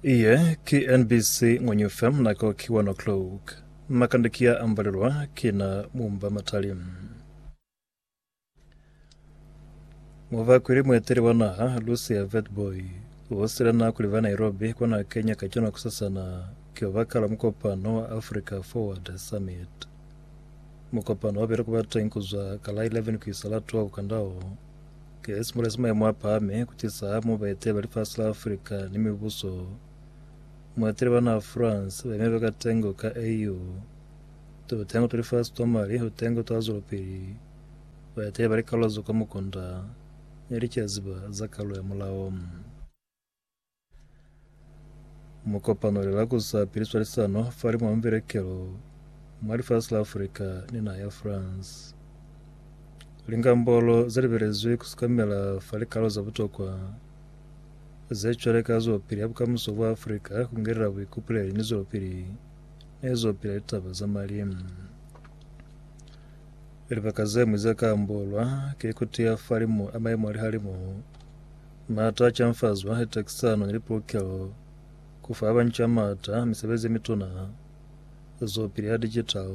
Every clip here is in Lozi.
Iye ki NBC Ngwenyu FM nako ki 1 o'clock. Makande ki ya ambalelwa ki na mumba matali. Muvakwili mueteli wa naha Lucia Vetboy usile na kuli va Nairobi kona Kenya kacwalo kusasana ki obakala mukopano wa Africa Forward Summit. Mukopano wabile kuba teng kuzwa ka la 11 kuisa la 12 kandao Ki simulela sa maemo a pahami ku tisa ha mu baetela ba lifasi la Africa ni mibuso. Mueteli ba naha France ba imile ka tengo ka AU. Tutengo twa lifasi twa mali ho tengo twa zwelopili. Baeteli ba likalula zo kwa mukunda ne licaziba za kalu ya mulao. Mu kopano le la kusa pili swalisano fa limo mubelekelo mwa lifasi la Afrika ni naha ya France. Lingambolo ze libelezwi ku sukamela fa likalo za butokwa ze cwale ka zwelopili ya bukamuso bwa Afrika ku ngelela buikupuleli ni zwelopili ne zo pila litaba za malimu. Libaka ze ñwi ze ka ambolwa ki ku tiya fa limo a maimo a lihalimu Maata a canfazwa ni takisano ni lipulukelo ku fa banca maata a misebezi ye mituna, zwopili ya digital,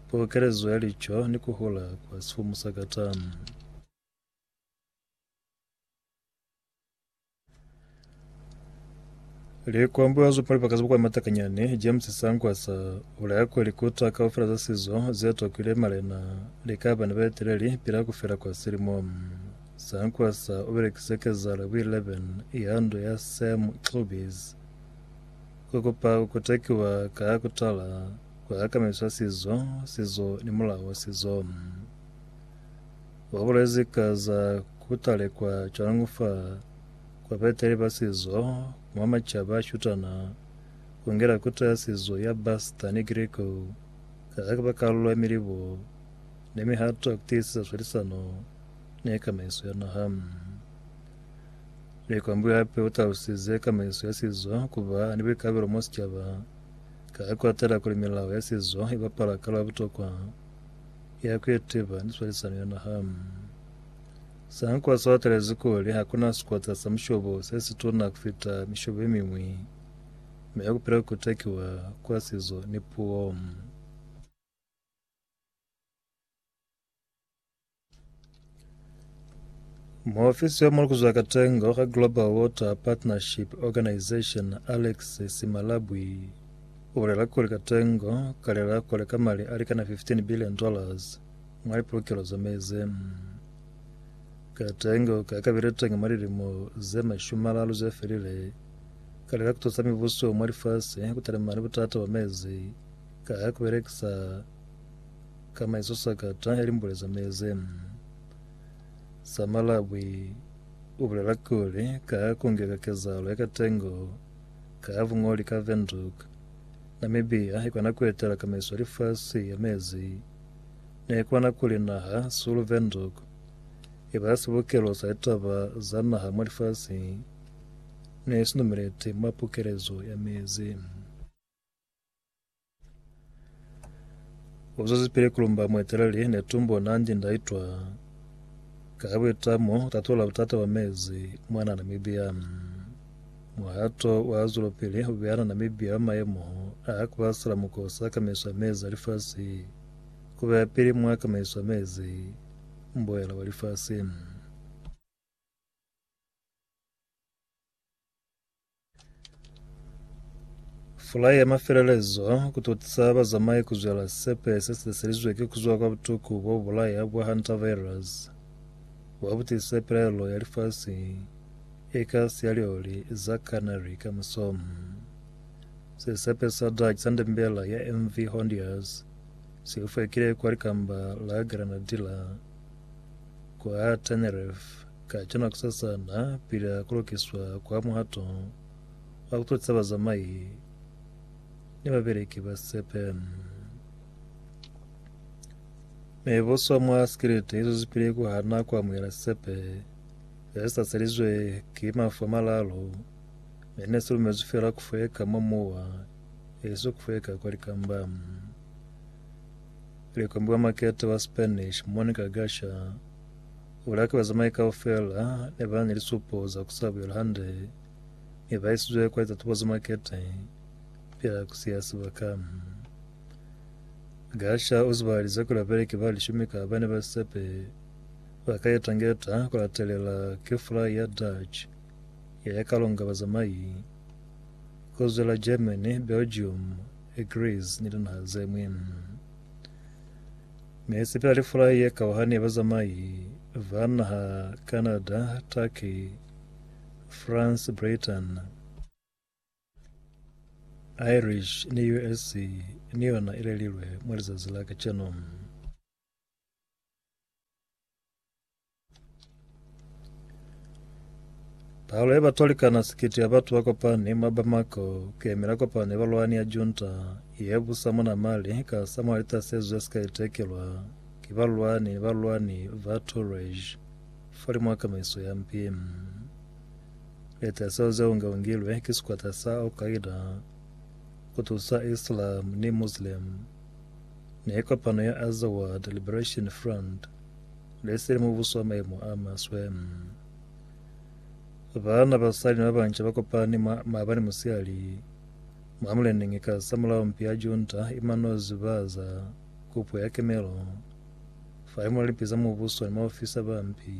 pulukelezo ya lico ni ku hula kwa sifumu sa katani. Likwambo ya zupimo lipaka zibukwa matakanyani James Sangwasa ulaya kuli likuta kaufela za sizo zetokile malena likaba ni baeteleli pila kufela kwa silimo. Sankwasa u belekise kezalo ku 11 ya ndu ya Sam Cloubis ku kupa ku kotekiwa ka ku tala kwa akamiswa sizo, sizo ni mulao wa sizo. U bulezi ka za ku talekwa cwañi fa kwa baeteli ba sizo mwa macaba a shutana ku ngela kuto ya sizo ya Basta ni Griko ka ku ba kalulo ya milibo ni mihato ya ku tiisisa swalisano ne kamaiso ya naha. Likwambwe hape o talusize kamaiso ya sizo kuba ni boikabelo mo sicaba ka ku atela kuli milao ya sizo i bapala kalo ya butokwa ya ku itiba ni swalisano ya naha. Sankwa so atelezi kuli hakuna sikota sa mushobo se situna kufita mishobo ye mingwi me kupila kutekiwa kwa sizo ni puo. Muofisi yo mulukuzwa katengo ka Global Water Partnership Organization Alex Simalabwi ubulela kuli katengo kalela kuleka mali alikana 15 billion dollars mwa lipulukelo za mezi. Katengo ka kabile tenge mwa lilimo ze mashumi malalu ze felile kalela kutusa mibuso mwa lifasi kutalima ni butata bwa mezi ka kubelekisa Ka maezo sakata ya limbule za meze za Malawi u bulela kuli, Ka ha ku ngeka kezahalo ya katengo ka ha buñoli ka Windhoek, Namibia i kona ku etela kamaiso ya lifasi ya mezi. Ne kona kuli naha sulu Windhoek i ba sibukelo sa litaba za naha mwa lifasi ne si numeleti mwa pukelezo ya mezi. Uzuzi pili kulumba mweteleli netumbo nanji ndaitwa kabwitamo tatula butata bwa mezi mwana Namibia. Muhato wa zulupili ubeana Namibia wa maemo a kubasela mukosi a kamaiso ya mezi a lifasi kubeya pili mwa kamaiso ya mezi mboela wa lifasi. Fulai ya mafelelezo ku totisa bazamai ku zwela sisepe se si tliselizwe ki ku zwa kwa butuku bo bu bulaya bwa hantavirus. Wa butise pilaelo ya lifasi e ka siya lioli za Canary ka muso. Sisepe sa Dutch sa ndembela ya MV Hondius si ufekile kwa likamba la Granadilla kwa Tenerife. Ka cona kusasana, pili a kolokiswa kwa muhato wa kutotisa bazamai ni babeleki ba sepe, mi boswa mwa sikiliti izwezipili kuhana kuamuhela sepe ze sa selizwe ki mafu a malalu, mi ne si lumezwi fela kufweka mwa muwa, isiso kufweka kwa likamba. Likombi wa makete wa Spanish Monica Gasha Bulaki bazamai kaufela ne ba ni lisupo za ku sa buyela hande, mi ba isizwe kwa litatubo za makete pila ku siya sibaka. Gasha u zibahalize kuli babeleki ba lishumi ka ba ne ba sepe ba ka eta ngeta ku latelela ki fulai ya Dutch ye ne ka longa bazamai ku zwela Germany, Belgium, Greece ni linaha ze ñwi. Ne sepela lifulai ye kauhani ya bazamai ba naha Canada, Turkey, France, Britain, Irish ni US ni yona ilelilwe mwa lizazi la kacenu. Palo ya batu balikana sikiti ya batu bakopani mwa Bamako kuyemela kopano ya balwani ya junta ye busa muna Mali ka samula litasezo zesika itekelwa ki balwani ni balwani ba Tuareg falimwi wa kamaiso ya mpi. Litasezo zeo ngeungilwe ki sikwata sa Al-Qaeda kutusa Islam ni Muslim ni kopano ya Azawad Liberation Front Ne se li mubuso wa maimo a maswe. Baana, basali ni babanca ba kopani mwa maabani musihali mwa Muleneñi ka sa mulao mpi ya junta i manozi ba za kupo ya kemelo fa limuna lipi za mubuso ni maofisa ba mpi.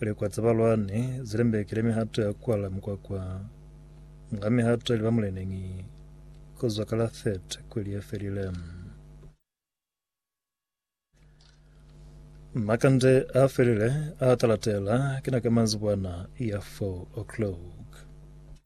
Likwa za balwani zi lembekile mihato ya kwala mukwakwa nga mihato ya liba muleneñi ku zwa ka la 30 kweli ye felile. Makande a felile a talatela kina ka manzibwana ya 4 o'clock.